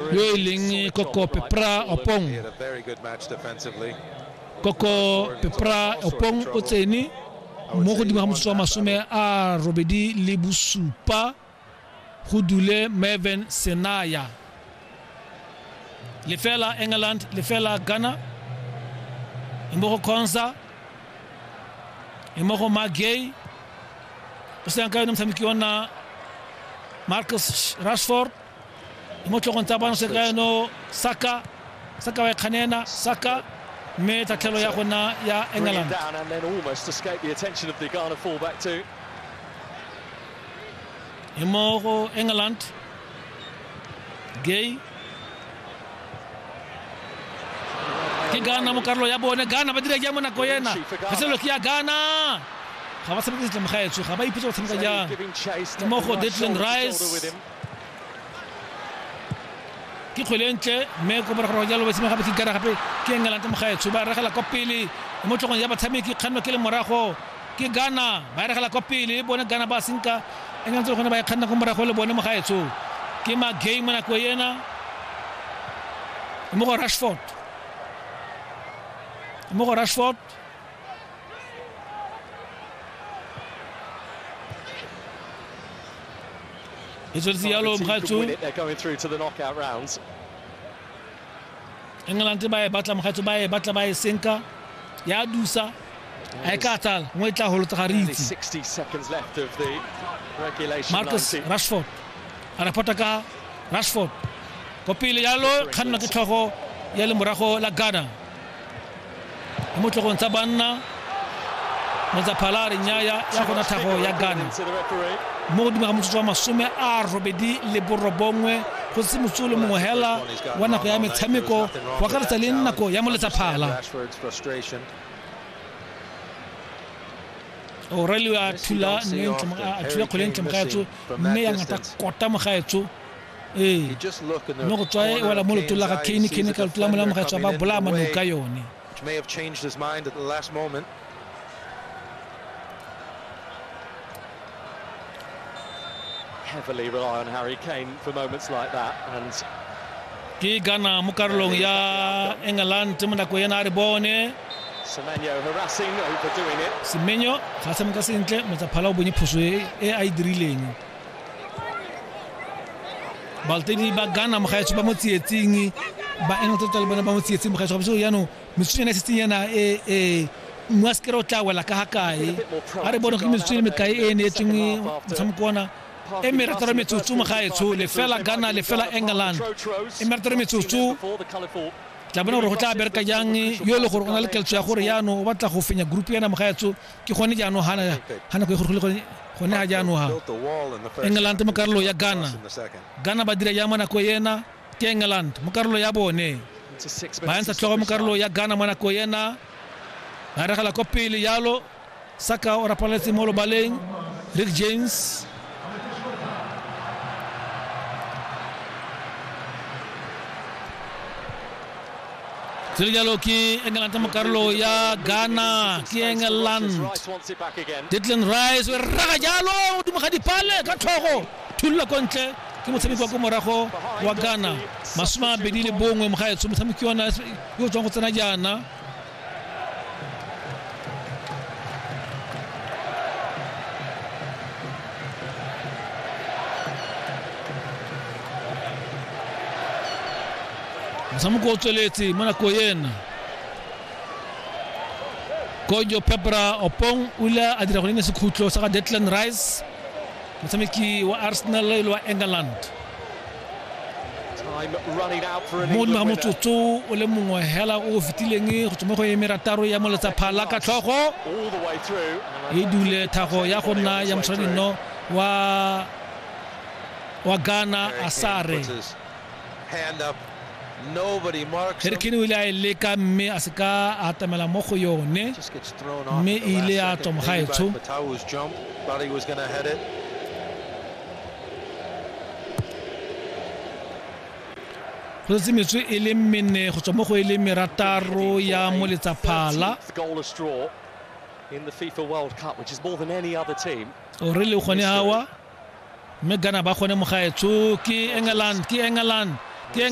Yoiling koko pe pra opong. Koko pe pra opong o tsene mo godimo ga motsotso wa masome a robedi le bosupa go dule Mervin Senaya. Lefela England, lefela Ghana. Mo go Khonsa, mo go Magay. O se ka yone motshameki ona Marcus Rashford mo tlhogong tsa bano seka eno saka saka wa kganena saka mme tatlhelo ya gona ya england e mo go england gay ke gana mo karolo ya bone gana ba dira jang mo nako ena kgaselelo ke ya gana ga ba tshameke setlamo ga etswe ga ba ipitse go tshameka jang mo go detlin rice ke kgwele e ntle mme ko morago jalo ba simega botsi kara gape ke engelante mogaetsho ba regela kwa pele mo tlhogong ya batshameki kganno ke le morago ke gana ba regela kwa pele e bone gana ba senka engelante gone ba e kganna ko morago le bone mogaetsho ke magay mo nako ena mo go rashford mo go rashford e tsweletse yalo mogatso england ba e batla mogatso ba e batla ba e senka ya dusa a e ka tsala nngwe e tla golotsa ga re itse marcus rashford a reporta ka rashford ko pele yalo kganna ke tlhogo ya lemorago la ghana mo tlogong tsa banna motsaphalare nyaya ya gona thago ya gane mo godimo ga motsotso wa masome a robedi le borobongwe go se motso le mongwe hela wa nako ya metshameko go akaretsa le nako ya moletsaphala aurelio a thula kgole ntle mogaetso mme ya ngata kota mogaetso Ee, mme go tswa e wela mo lotong la ga Kane, Kane ka lotola mola mogaetswa ba bolaya manong ka yone. heavily rely on Harry Kane for moments like that and ke gana mo karolong ya england mo nako ena a re bone semenyo ga se moka sentle motsaphala o bonye phoso e a e dirileng balteni ba gana mogaetsho ba mo tsietsing ba england tota le bone ba mo tsietsing mogaetsho gape jaanong metsutsonyana e setseng yana e e mmu a sekere o tla wela ka ga kae a re bone go metsutsone mekae e e neetseng motshameko ona e merataro metsotso mogaetsho lefela gana lefela england e merataro metsotso tla bona gore go tla bereka jang yo e le gore o na le keltso ya gore yaanong o batla go fenya group yana mogaetsho ke gone jaanong ga nako e gorogile gone gone ga jaanong ga england mo karolo ya ghana ghana ba dira jang mo nako ena ke england mo karolo ya bone ba yantsha tlhogo mo karolo ya ghana mo nako ena ba regela ko pele jalo saka o rapaletse mo lobaleng rick james Sele jalo ke England mo karolo ya Ghana ke England Declan Rice o rraga jalo godimo ga dipale ka tlhogo thulula ko ntle ke motshameki wa ko morago wa Ghana masome a mabedi le bongwe mogaetsho motshameki ona yo tswang go tsena jaana motshameko o tsweletse mo nako ena kojo pepra opong o ile a dira gone sekhutlo sa ga detland rice motshameki wa arsenal le wa england mo nna motsotso o le mongwe hela o o fetileng go tswa mo go emerataro ya moletsa phala ka tlhogo e dule thago ya go nna ya moshwaradino wa wa ghana asare harricane o ile a e leka mme a se ka a atamela mo go yone mme e ile ya tswa mogaetsho go setse metswe e leng mene go tswa mo go e leng merataro ya mo letsaphala o re le gone awa mme gana ba gone mogaetsho ke england ke england ke